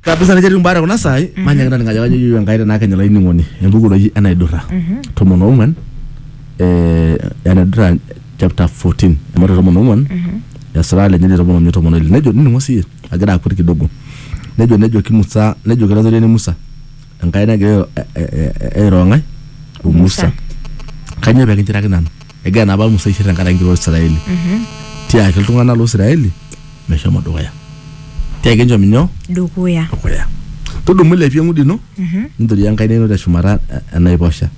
kabisa netii mbata kuna sai manya ngana ngaja kajo yiyo enkai tenaa kenya laining'oni embuku naji enaidurra tomon ong'uan eh, enaidurra chapter 14 amu ore tomon ong'uan esira lenye ni tomon omiet tomon oile nejo nining'o siye agira akut kidogo nejo nejoki musa nejoki latoriani musa enkai nagira airo- eh, eh, eh, airo ng'ae o musa kanyoo pekinchiraki nanu egira naa apa musa aishir tenkaraki enkiroo israeli tiaki iltung'anak loo israeli meshomo dukuya tiaki enchom inyoo dukuya dukuya tudumu ilepie eng'udi ino nintoria enkaina ino teshumata e- enaiposha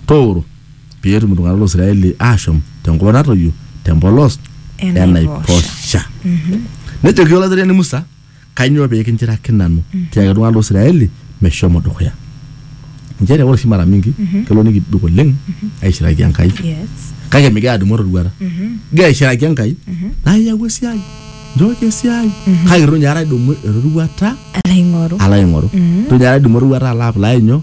tooro pee etum iltung'anak loo israeli aashom tenkop natoyio tempolos Enaiposha. enaiposha nejoki olateriani musa Kainyoo pee kinchiraki nanu tiaki iltung'ana lo Israeli meshomo dukuya? Nchere ore oshi mara mingi kelo nikibik oleng aishiraki Enkai Yes. kake migira adumu eroruata. Igira aishiraki Enkai naa iyau esiai, nchooki esiai kake itu ninye aikata idumu eroruata Alo aing'oru. alo aing'oru. Itu ninye aikata idumu eroruata alo apply nyoo?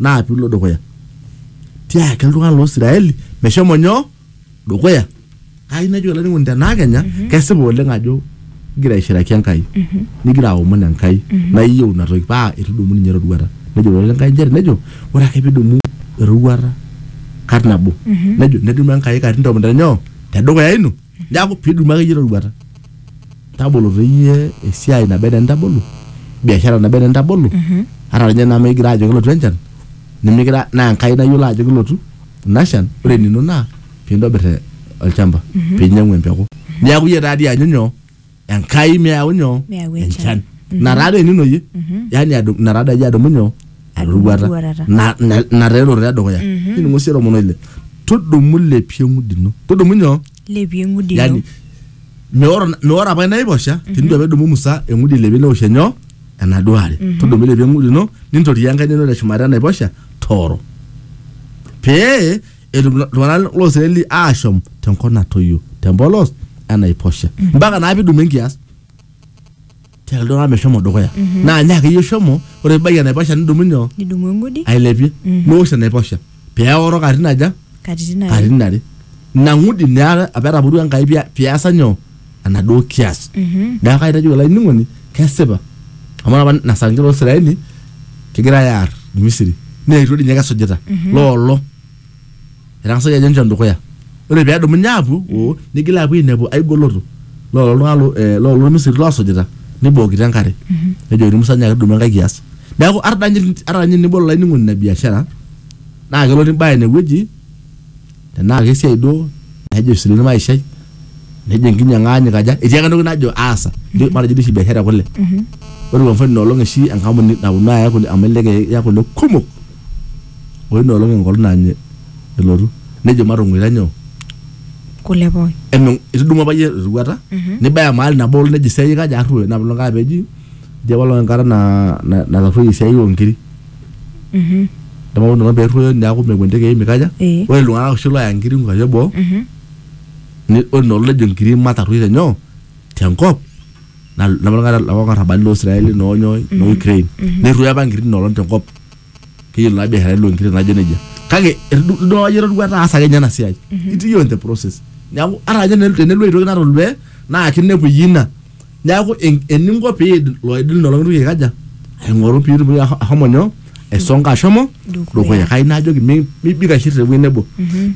naa pilo dukuya tiaki iltung'anak loo Israeli meshomo nyoo dukuya ai nejo olainining'oni tenaa kenya kesipa oleng ajo igira aishiraki Enkai nigira aomon Enkai naa iyieu ina toki paa itudumu ninye eroruata nejo ilo likae nchere nejo ore ake pidumu eroruata kat nabo nejo nedumu Enkai katitin tomon tenyoo tedukuya ino neaku pidumu akeyie roruata tabolo teyie esiai naba enaa entabolo biashara naba enaa entabolo ata ninye naa mikigira ajo kelotu enchan nimikira naa enkai nayiolo ajo kelotu ina shan ore enino naa pintobir eh, olchamba pinyiang'u empeku niaku iyie taadi ianyu nyoo enkai meyau nyoo Meyau enchan. enchan ina taa doi enino iyie yaani adu- ina taa doi iyie adumu nyoo Adumu eroruata eroruata. Na- na- ina taa eroruata edukuya niningo sii lomon oile tudumu lepie eng'udi ino tudumu nyoo lepie eng'udi ino yani meoro meoro apa inaiposha tenitu apa edumu musa eng'udi ilepie neosh enyoo enaduo are tudumu ilepie eng'udi ino nintoriaa enkaina ino teshumata enaiposha tooro pee etum ilo- iltung'anak loo Israeli aashom tenkop natoyio tempolos enaiposha mpaka naa pidumu enkias tiaki iltung'anak meshomo dukuya naa nye akeyie shomo ore pibaiki enaiposha nidumu nyoo nidumu engudi ailepie niwosh enaiposha peoro katitin aja katitin are katitin are ina ng'udi naa apa etapurua enkai pia- piasa nyoo enaduo kias Mhm. neeku kaitajo olainining'oni kesipa amu ore apa ina saa nkera oisiraeli kegirae aar misiri neetuo dii ninye kesujita loolo etang'asaki ajo enchom dukuya ore peedumunye aapuo oo nigil aapuo ainepu ai goloto loolo iltung'anak lo- eh, loolo misiri loosujita nibookito enkare nejokini musa nyaaki tudumu enkae kias neeku ata danye- ata ninye tenibol olainining'oni ina biashara naa kelotu imbaya inewueji tenaa kesiai duo nejo isilen maishai nejo enkinyang'a aanyu kaja etii ake entoki najo aasa Ijo- matejo duo oshi biashara ekule ore kwa mfano inoolong oshi enkampuni naponu aaya kule amu elelek eya kule kumok ore ina olong enkolong nany elotu nejo matong'oita nyoo kule pooki emeng itudumua apa iyie eroruata nibaya mahali nabo olong nejo esiai kaja arruoyo ina olong apa eji eji apa olong enkata na- na- natarruoyie esiai onkiri Mhm. Nemaun inono peruoyo neaku mepuo intekei mikaja. Eh. Ore iltung'anak oshi looya nkiri nkuapi eboo Mhm. ni- ore inoolong nejo nkiri matarruoi tenyoo tenkop na- napa oltung'ani lapa arrabali loo Israeli noo nyoo noo Ukraine. Nerruoyo apa nkiri inoolong tenkop. Keyiolo naa biasharani loo nkiri najo nejia. Kake etu- idol ajo etoduaa taasa ake ninye ena siai. Itii iyiook in the process. Neeku ata ninye tenelo aitoki natolua naa kinepu iyie ina Neaku eninko pee idil loidil lelo ng'atunyo aikaja aing'oru pee itumoki ahomo nyoo aisonga ashomo dukuya. Kai najoki mibik aishir tewuei nebo.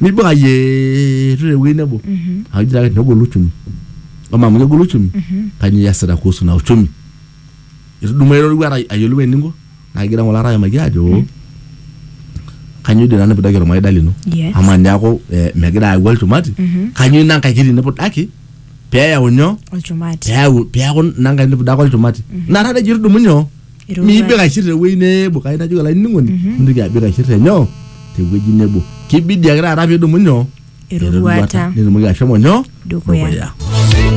Mibik ayietu tewuei nebo. Amu ijo taake negolu uchumi. Amaa amu kegolu uchumi kanyoo iyasita kuhusu ina uchumi? Itudumua eroruata ayiolou eninko? naa kigira ng'ole aimaki aajo hmm. kanyioo dii nanu pidaki ormaida lino amaa niaku eh, megira ayau olchumati mhm. kanyioo ina nkae kiti nipudaki peyau nyoo olchumati peyau peyaku ina nkae nipudaka olchumati mhm. naa taata ejo tudumu nyoo miibik aishir tewueji nebo kai najoki olainining'oni mhm. mintoki abik aishir tenyoo tewueji nebo kibidi ake taata pidumu nyoo eroruata nitumoki ashomo nyoo dukuya